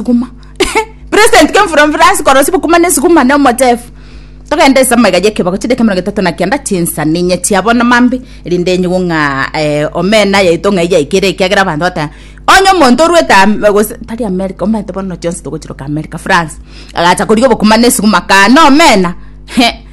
sukuma president came from france koro sibukuma ne sukuma ne omochef togende ase amaiga y'ekebako chideke emerongo etato na kianda chinsa ninye chia bono mambe erinde enyigwe ng'a eh, omena yaito ng'a yaikere ekiagera abanto bataya onye omonto orwete Am- gose tari america omanyete bono chionsi togochiroka america france agacha koria obokuma ne sukuma kane omena he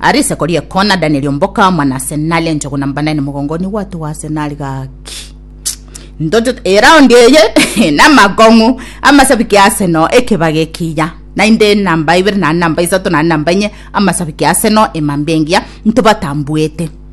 Aria isiko ri'ekoo na Danieli omboka omwana ase naria enchogu na mbandai na mogongo nigo gwatoa ase nari gaki ntocho eraundi eye na makong'u amasabiki ase no ekebaga ekiya nainde namba ibere na namba isato na namba inye amasabiki ase no emambia engiya ntobatambuete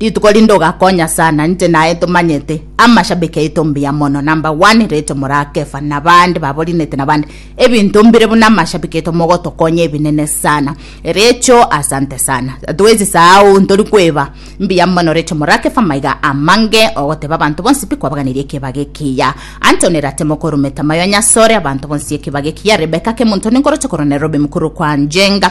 Rituko rinde ogakonya sana inche naye tomanyete amashabiki aito mbuya mono number one Rachel Morakefa na bande baborinete na bande ebinto mbire buna amashabiki aito mogotokonya ebinene sana Rachel asante sana atwezi saao ntori kweba mbuya mono Rachel Morakefa maiga amange ogoteba abanto bonsi pi kwabaganeria ekiba gekiya Anthony Ratemo korumeta mayo nyasore abanto bonsi ekiba gekiya Rebecca Kemunto ninkoroche korwa Nairobi mukuru kwa Njenga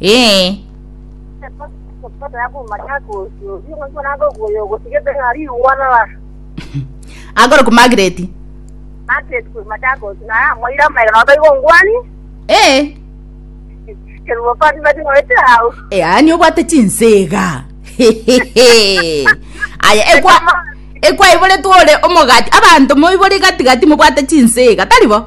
Ee. Agorokwa Margaret. Ee. Yaani obwate chinsega. Hehehe. Aya ekwa ekwa iboretwe ore omogati abanto moibore gati gati mobwate chinsega tari bo?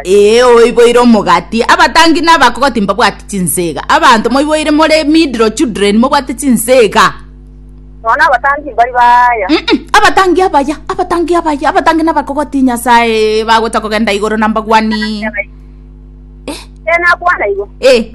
Ee, oiboire omogati. Abatangi na abakogoti mbabwati chinsega. Abanto moiboire more middle children mobwate chinsega. Mm-mm, abatangi abaya, abatangi abaya, abatangi na abakogoti Nyasaye bagocha kogenda igoro na mbagwani. Ee,